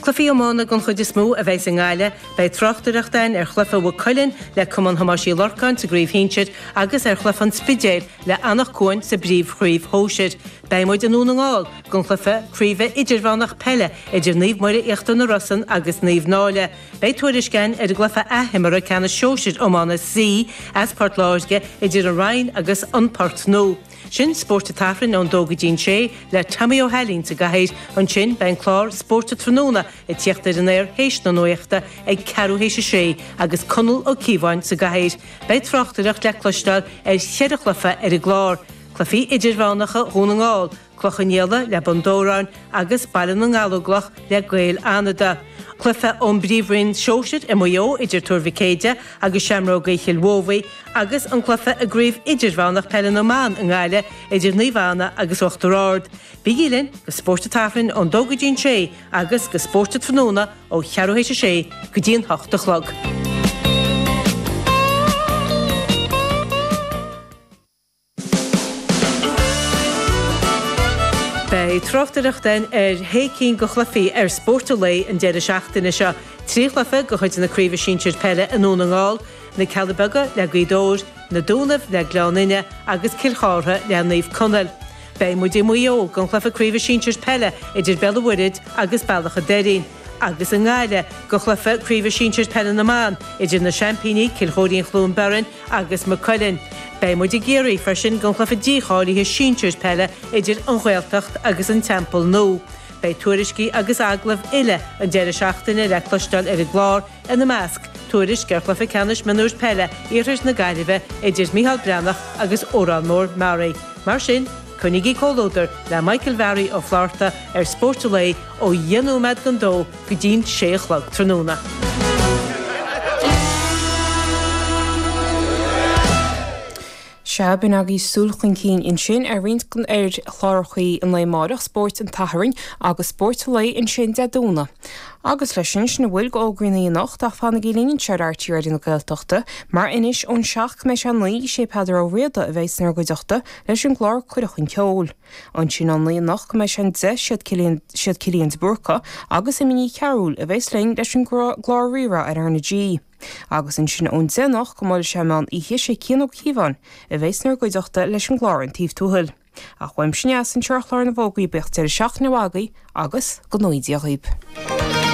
Cluichí iomána den chuid is mó a bheas i nGaillimh. Beidh tráchtaireacht ann ar chluiche Mhaigh Cuilinn le Cumann Thomáis Uí Lorcáin sa gcraobh shinsir agus ar chluiche an Spidéil le Anach Cuain sa bpríomhchraobh shóisir. Beidh muid i nDún na nGall don chluiche craoibhe idirmheánach peile idir Naomh Muire Íochtar na Rosann agus Naomh Náille. Beidh tuairisc ann ar an gcluiche athimeartha ceannais shóisir iomána C as Port Láirge idir An Rinn agus An Port Nua. Sin Spórt an tSathairn ón dó go dtí'n sé le Tommy Ó hAilín sa gcathaoir. Ansin beidh an clár Spórt an Tráthnóna ag tíocht ar an aer théis na nuachta ag ceathrú théis a sé agus Conall Ó Cíobháin sa gcathaoir. Beidh tráchtaireacht le cloisteáil ar cheithre chluiche ar an gclár, cluichí idirmheánacha Dhún na nGall, Cloich Cheann Fhaola le Bun Dobhráin agus Baile na nGallóglach le Gaeil Fhánada, cluiche ón bPríomhroinn Shóisir i Maigh Eo idir Tuar Mhic Éadaigh agus Seamróga Chill Mobhí, agus an cluiche i gCraobh Idirmheánach Peile na mBan i nGaillimh idir Naomh Anna agus Uachtar Ard. Bígí linn go Spórt an tSathairn ón 2 go dtí an 6 agus go Spórt an Tráthnóna ó cheathrú théis a sé go dtí an hocht a chlog. Beidh tráchtaireacht ann ar shé cinn de chluichí ar Spórt an Lae an deireadh seachtaine seo, trí chluiche de chuid na Craoibhe Sinsir Peile i nDún na nGall, Na Cealla Beaga le Gaoth Dobhair, Na Dúnaibh le Gleann Fhinne agus Cill Chartha le Naomh Conaill. Beidh muid i Maigh Eo don chluiche Craoibhe Sinsir Peile idir Béal an Mhuirthead agus Bealach an Doirín, agus i nGaillimh don chluiche Craoibhe Sinsir Peile na mBan idir na seaimpíní Cill Chóirín-Chluain Bheirn agus Maigh Cuilinn. Beidh muid i gCiarraí freisin don chluiche dícháilithe sinsir peile idir An Ghaeltacht agus An Teampall Nua. Beidh tuairiscí agus agallaimh uile an deireadh seachtaine le cloisteáil ar an gclár, ina measc, tuairisc ar Chluiche Ceannais Mionúir Peile Iarthar na Gaillimhe idir Micheál Breathnach agus Órán Mór Meáraí. Mar sin, coinnigí comhluadar le Michael Bharry Ó Flátharta ar Spórt an Lae ó dheich nóiméad don dó go dtí'n sé a chlog tráthnóna. Sea, b'in agaibh súil chun cinn ansin ar roinnt de chlárachaí an lae amárach, Spórt an tSathairn agus Spórt an lae ansin Dé Domhnaigh. Agus leis sin, sin a bhfuil d'fhógraí na hoíche anocht ach fanaigí linn anseo ar RTÉ Raidió na Gaeltachta, mar anois ón seacht go mbeidh sé a naoi, is é Peadar Ó Riada a bheas inár gcuideachta leis an gclár Cuireadh Chun Ceoil. Ansin ón naoi anocht go mbeidh sé an deich siad Cillian de Búrca agus Emma Ní Chearúil a bheas linn leis an gclár Rí-Rá ar RnaG. Agus ansin ón deich anocht go mbuailfidh sé meán oíche sé Cian Ó Cíobháin a bheas inár gcuideachta leis an gclár An Taobh Tuathail. Ach uaimse anois anseo ar chlár na bhfógraí bíodh deireadh seachtaine mhaith agaibh agus go ngnóthaí Dia dhaoib.